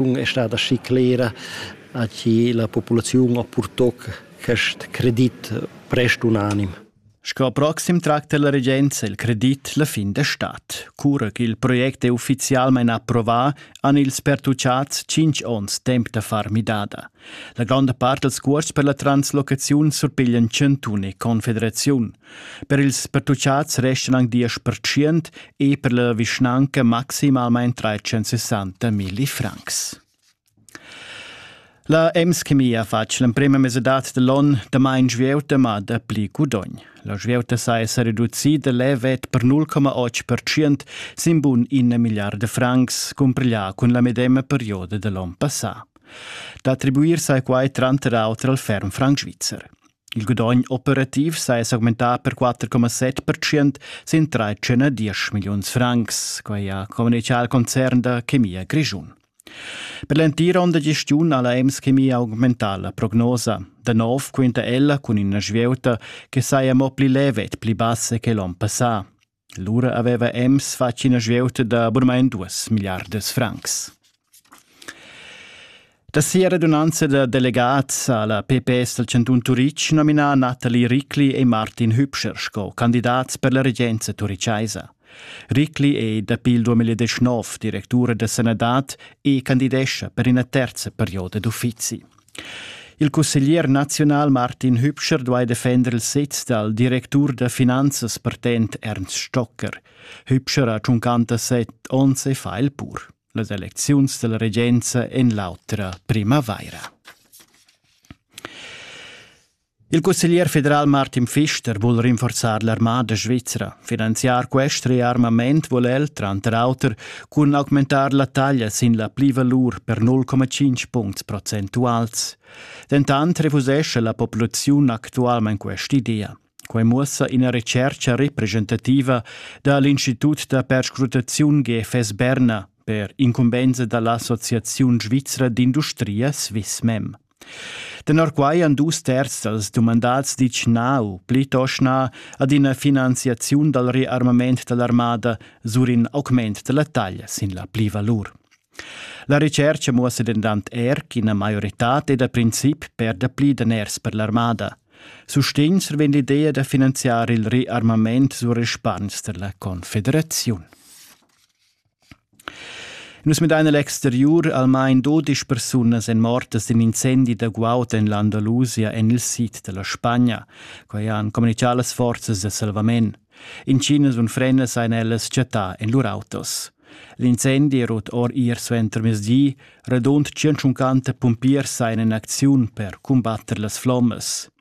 situaziun è stata aschi clera a chi la populaziun ha purtò quest credit prest unanim. Sco proxim tracta la regenza il credit la fin de stat. Cura che il project è ufficialmente approvato, han ils pertucciats 5 onns temp da far midada. La gronda parte dels cuors per la translocaziun surpiglian cantun e confederaziun. Per ils pertuchats restan anc diesch per tschient e per la vischnanca maximalmain 360 milli francs. La EMS-chemia ha fatg l'emprima mesedat dell'on damain svieuta ma dapli gudogn. La svieuta sa esser reducida levet per 0,8% sin bun ina miliarda francs cumpriglià cun la medema perioda dell'on passà. Da attribuir sai quai tranter auter al ferm franc svizzer. Il gudogn operativ saja s'augmentà per 4,7 percent sin 13,10 milliuns francs, quai ha communitgà il concern da chemia grischun. Per l'entira onda gestiun ha la Ems Chemia augmentà la prognosa. Da nov quinta ella cun ina svieuta che saja mo pli leve e pli bassa che l'onn passà. Lura aveva Ems fatg ina svieuta da burmain duas milliardas francs. Da sia radunanza da delegats ha la PPS dal chantun Turitg nominà Nathalie Rickli e Martin Hübscher sco candidats per la regenza turichaisa. Rickli è dapi il 2019 directura da sanadad e candidescha per ina terza perioda d'uffizi. Il cusseglier naziunal Martin Hübscher duai defender il sez dal directur da finanzas partent Ernst Stocker. Hübscher ha 57 onns e fa il pur. Las elecziuns della regenza en l'autra primavaira. Il cusseglier federal Martin Pfister vul rinforzar l'armada svizra. Finanziar quest rearmament vul el, tranter auter, cun augmentar la taglia sin la plivalur per 0,5 puncts procentuals. Dentant refusescha la populaziun actualmain quest'idea. Quai muossa ina retschercha representativa da l'Institut da perscrutaziun GFS Berna per incumbensa da l'Associaziun svizra d'industria Swissmem. Tenor quai han dus terzs dals dumandats ditg nau, plitost na, ad ina finanziaziun dal rearmament dall'armada sur in augment della taglia sin la plivalur. La recerca muossa dentant er ch'ina maioritad è da princip per dapli daners per l'armada. Sustegns vegn l'idea da finanziar il rearmament sur respargns della confederaziun. Nus midain egl exteriur almain dodisch persunas èn mortas d'in incendi da guaud en l'Andalusia en il sid da la Spagna. Quai han communitgà las forzas da salvament. Intginas unfrendas han ellas chattà en lur autos. L'incendi è rut or ier suentermezdi. Radund 150 pumpiers sajan en acziun per cumbatter las flommas.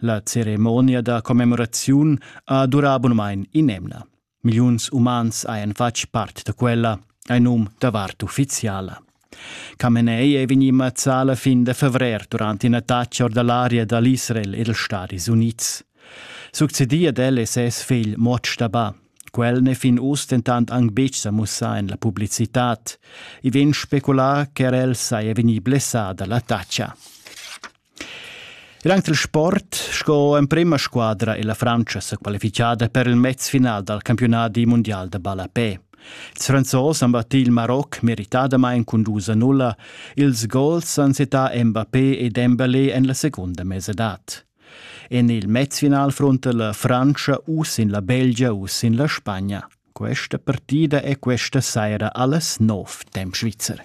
La ceremonia da commemoraziun ha durà bunmain in'emna. Milliuns umans hajan fatg part da quella, ein num da vart ufficiala. Kamenei è vegnì mazzà la fin da fevrer durant in'attacca or da l'aria da l'Israel e dals Stadis Unids. Succedì ad el è ses figl Motsch Daba. Quel n'è fin uss dentant anc betg sa mussà en la publicitad. I vegn speculà ch'er el saja vegnì blessà da l'attacca. Ir aunc dil sport sco emprema squadra è la Frantscha sequalifichada per il mez final dal campiunadi mundial da ballapè. Ils Franzos han battì il Maroc meritadamain cun dus a nulla. Ils gols han settà Mbappé e Dembélé en la segunda mesedad. En il mezfinal fronta la Francia u sin la Belgia u sin la Spagna. Questa partida è questa saira alles 9 temp svizzer.